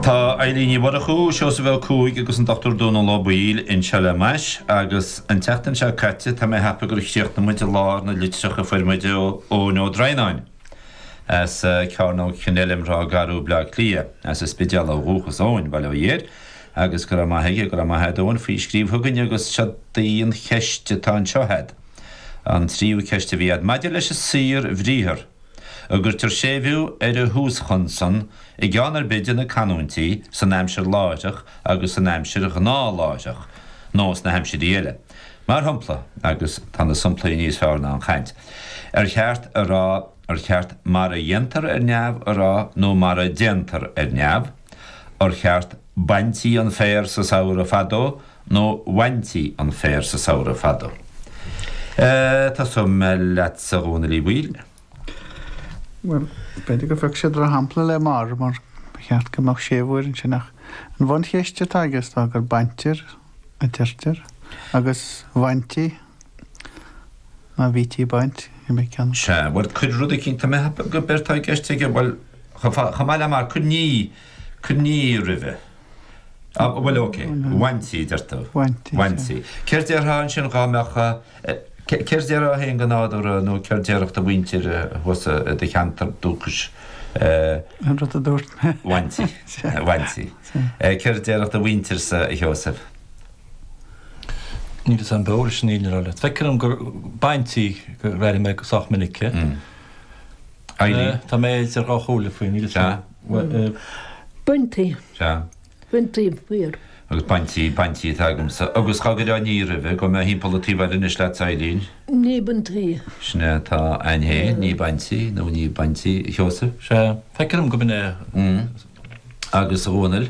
Tá Eibhlín Ní Mhurchú, Seosamh Ó Cuaig agus an Dr Dónal Ó Baoill anseo le m'ais agus an tseachtain seo caite tá mé ag ceapadh gur chríochnaigh muid i lár na litreach a fuair muid ó Eoin Ó Droighneáin as Cearnóg Kenilworth i Ráth Garbh, Bleá Cliath, as an Spidéal ó dhúchas Eoin, bail ó Dhia air agus go raibh maith aige, go raibh maith a'd Eoin faoi scríobh chugainn agus seo í an cheist atá anseo a'd, an tríú ceist a bhí a'd. Maidir leis an saorbhriathar. an gcuirtear séimhiú ar an thúschonsan i gceann ar bith de na canúintí san aimsir láithreach agus san aimsir ghnáthláithreach, nó sna haimsirí eile, mar shompla, agus tá na somplaí níos fearr ná an chaint, ar cheart a rá, ar cheart mar a dhéantar ar neamh a rá nó mar a déantar ar neamh? Ar cheart 'baintí an féar sa samhradh fadó' nó 'bhaintí an féar sa samhradh fado'? Eh, tosóidh mé leatsa a Dhónaill Uí Bhaoill. Bhuel, b'fhéidir gur phioc sé drochshampla le mar, mar ba cheart go mbeadh séimhiú air ansin ach an bhuncheist atá aige is dóigh gur 'baintear' a deirtear agus 'bhaintí'. Má bhítí ag baint, ní bheadh ceann. Sea, bhuel, cuir rud eicínt, tá mé ag ceapadh gurb éard atá i gceist aige, bhuel, chomh maith le mar, cuir ní, cuir ní roimhe. Á, bhuel, ok, bhaintí, deir tú. Bhaintí. Bhaintí. Céard déarfá ansin dhá mbeadh, céard déarfá féin go nádúrtha nó céard déarfadh do mhuintir thuas i do cheantar dúchais? An rud a dúirt mé. Bhaintí. Bhaintí. Céard déarfadh do mhuintirsa, a Sheosaimh? Níl fhios a'm, b'fhearr sin í le rá leat. Feictear dhom gur baintí a deirim sách minic. Éirí. Tá mé idir dhá chomhairle faoi, níl fhios a'm. Baintí. Sea. Baintí, fíor. Agus baintí, baintí atá agamsa. Agus dá gcuirfeá ní roimhe, gabhfaidh mé timpeall an taobh eile anois leatsa Eibhlín? Ní baintí. Sin é atá a'inn féin, ní baintí, nó ní baintí, a Sheosaimh? Sea, feicim go mbeidh mé. Agus Dhónaill?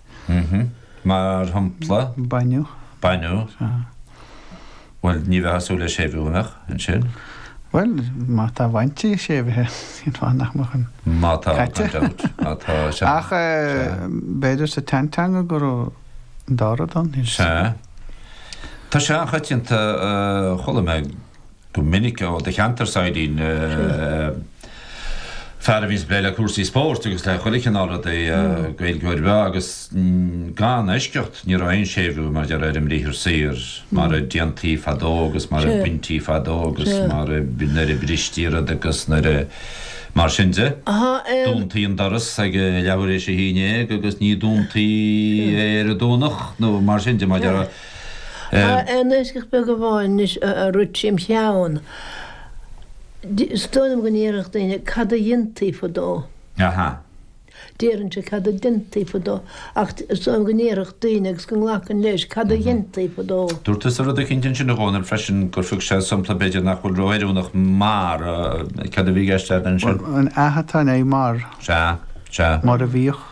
Mar shampla? Baineadh. Baineadh. Bhuel, ní bheifeá ag súil le séimhiú, an mbeadh? Ansin? Bhuel, má tá bhaintí séimhithe, cén fáth nach mbeadh an caite? Má tá, no doubt. Má tá, sea. Ach b'fhéidir sa tseanteanga go raibh an dara dán níos. Sea. Tá sé an-choitianta, chuala mé go minic ó do cheantarsa a Eibhlín, fear a bhíos ag plé le cúrsaí spóirt agus le chuile chineál rudaí Gaeilgeoir bhreá agus gan eisceacht ní raibh aon séimhiú mar a déarfá ar an mbriathar saor, mar a déantaí fadó agus mar a baintí fadó agus mar a, nuair a bristí rud agus nuair a, mar sin de. Dúntaí an doras ag leathuair éis a haon déag agus ní dúntaí é ar an Domhnach nó mar sin de, mar a déarfá. Aon eisceacht beag amháin anois a rith tríom cheann. Is dóigh liom go ndéarfadh daoine cad a dhéantaí fadó. Déarfainnse cad a déantaí fadó, ach is dóigh liom go ndéarfadh daoine agus go nglacfainn leis, cad a dhéantaí fadó. Dúirt tusa rud eicínt ansin a Dhónaill freisin, gur thug sé sompla b'fhéidir nach bhfuil ró oiriúnach mar, cad a bhí i gceist agat ansin? An a atá i ndiaidh mar. Sea, sea. Mar a bhíodh.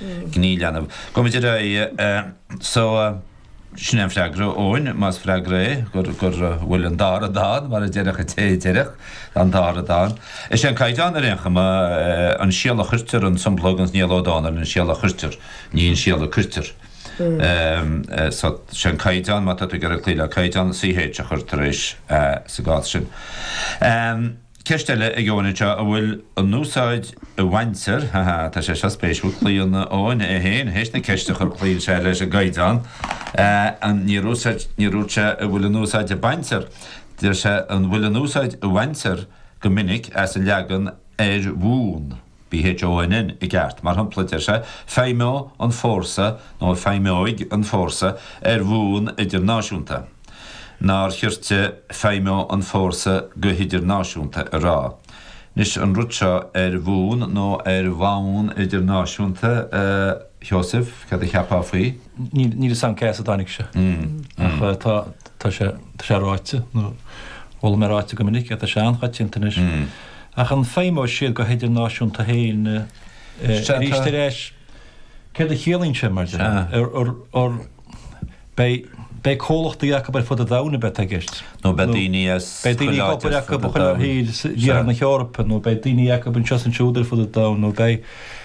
Gné leanbh. Gabhaimid ar aghaidh. So, sin é an freagra, Eoin, más freagra é, gur, go bhfuil an dá rud ann, mar a déarfadh an té a déarfadh, an dá rud ann. Is é an Caighdeán ar aon chuma, an síol a chuirtear an sompla ag, ins Niall Ó Dónaill an síol a chuirtear, ní an síol a cuirtear. So, sé an Caighdeán, má tá tú ag iarraidh cloí le Caighdeán, CH a chur tar éis a sa gcás sin. Ceist eile ag Eoin anseo, an bhfuil an úsáid a bhaintear, ha ha, tá sé seo spéisiúil, cloíonn Eoin é féin, théis na ceiste a chur cloíonn sé leis an gcaighdeán, an, níor úsáid, níor dhúirt sé an bhfuil an úsáid a baintear, deir sé an bhfuil an úsáid a bhaintear go minic as an leagan ar bhonn. B H O N N i gceart, mar shampla, deir sé, feidhmeoidh an fórsa nó feidhmeoidh an fórsa ar bhonn idirnáisiúnta. Nár chirte feidhmeoidh an fórsa go hidirnáisiúnta a rá? Anois, an rud seo ar bhonn nó ar bhonn idirnáisiúnta, a Sheosaimh, cad a cheapfá faoi? Níl, níl 'fhios a'm cé as a dtáinig sé. Ach tá, tá sé, tá sé ráite, nó, chuala mé ráite go minic é, tá sé an-choitianta anois. Ach an feidhmeoidh siad go hidirnáisiúnta féin arís ar ais? Céard a chiallaíonn sé mar deir? Beidh comhlachtaí acu ar fud an domhain a bheith i gceist. Nó beidh daoine as chuile áit ar fud an domhain. Beidh daoine acu ar fud an domhain. Iarthar na hEorpa nó beidh daoine acu anseo is ansiúd ar fud an domhain nó beidh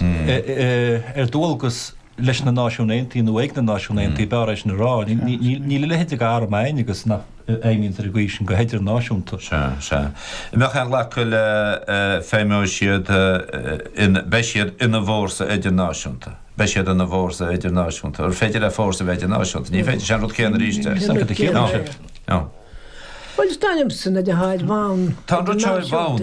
ar dualgas leis na Náisiúin Aontaithe nó ag na Náisiúin Aontaithe, b'fhearr é sin a rá. Níl a leithéid de arm ann agus nach bhfeidhmíonn ag aois sin go hidirnáisiúnta. Sea, sea. An mbeadh aon ghlacadh le feidhmeoidh siad in beidh siad ina bhfórsa idirnáisiúnta. Beidh siad ina bhfórsa idirnáisiúnta. An féidir le fórsa a bheith idirnáisiúnta? Ní féidir. Sé an rud céanna arís é. Sin an rud céanna arís é. Bhuel, is dóigh liomsa, na de háit bhonn, Tá an rud seo ar bhonn.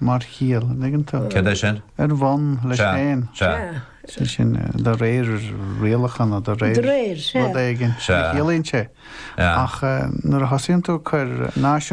mar chiall, an dtuigeann tú? Cad é sin? Ar bhonn leis Sea, féin. sea. Sea. Sé sin eh, de réir rialachanna de réir De réir, sea. rud éigin Sea. a chiallaíonn sé. Yeah. Ach eh, nuair a thosaíonn tú cur náisiún